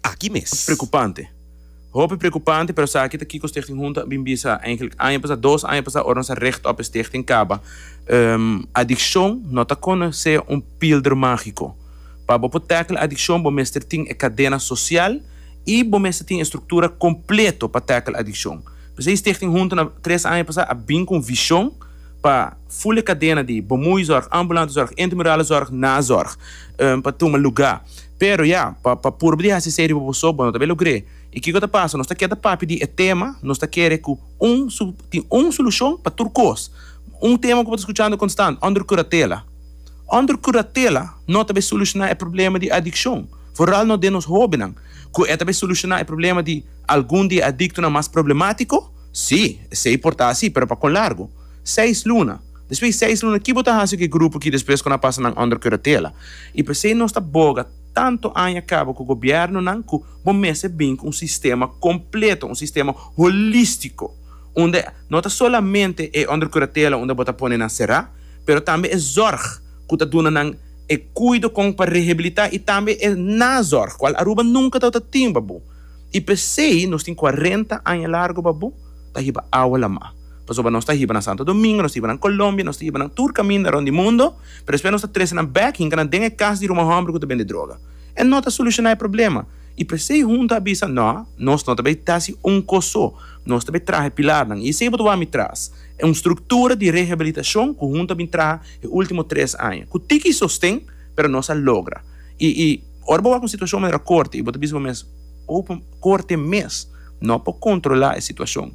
aki mes. Preocupante. Hopi preocupante, pero sa aki ta kiko Stichting Hunta a bin bisa eigenlijk aña pasa, dos aña pasa ora nos a richt op e stichting kaba. Adiccion no ta kos na sea un pilder magico. Pa bo por tackle adiccion bo mester tin e cadena social y bo mester tin e structura completo pa tackle adiccion. P'esei Stichting Hunta na tres aña pasa a bin cu un vision pa full e cadena di Bomoeizorg, Ambulante Zorg, Intramural Zorg, Nazorg pa tuma lugar. Pero ya, pa pa purba di hasi esei riba bo so, bo no ta be logr'é. I kiko ta pasa? Nos ta keda papia di e tema, nos ta kere ku un su tin un solushon pa tur kos. Un tema ku bo ta skuchando konstant, Under Curatela. Under Curatela no ta be solushoná e problema di adikshon, foral no den nos hóbennan. Ku e ta be solushoná e problema di algun di e adiktonan mas problemátiko? Sí, esei por ta así, pero pa kon largu? Seis luna. Despues di seis luna, ki bo ta hasi ku e grupo ki despues ku nan pasa nan onder kuratela? I p'esei nos ta boga tantu aña kaba ku gobièrnunan ku bo mester bin ku un sistema kompleto, un sistema holístiko, unda no ta solamente e onder kuratela unda bo ta pone nan será, pero tambe e zòrg ku ta duna nan e kuido kon pa rehabilitá i tambe e nazòrg, kual Aruba nunka ta wòrdu tin, babu. I p'esei nos tin kuarenta aña largu, babu, ta hiba awa lamá. Pasobra nos ta hiba na Santo Domingo, nos ta hiba nan Colombia, nos ta hiba nan tur caminda rond di mundo, pero despues nos ta trece nan bek hinca nan den e cas di ruman homber cu ta bende droga. E no ta soluciona e problema. Y presey hunto a bisa, No, nos no ta bay ta haci un cos so, nos ta bay traha e pilarnan. Y esey bo ta wak mi tras, e un structura di rehabilitacion cu hunto a bin traha e ultimo tres aña, cu tiki sosten, pero nos a logra. Y, y ora bo wak un situacion manera corte y bo ta bisa bo mes, Opo corte mes no por controla e situacion?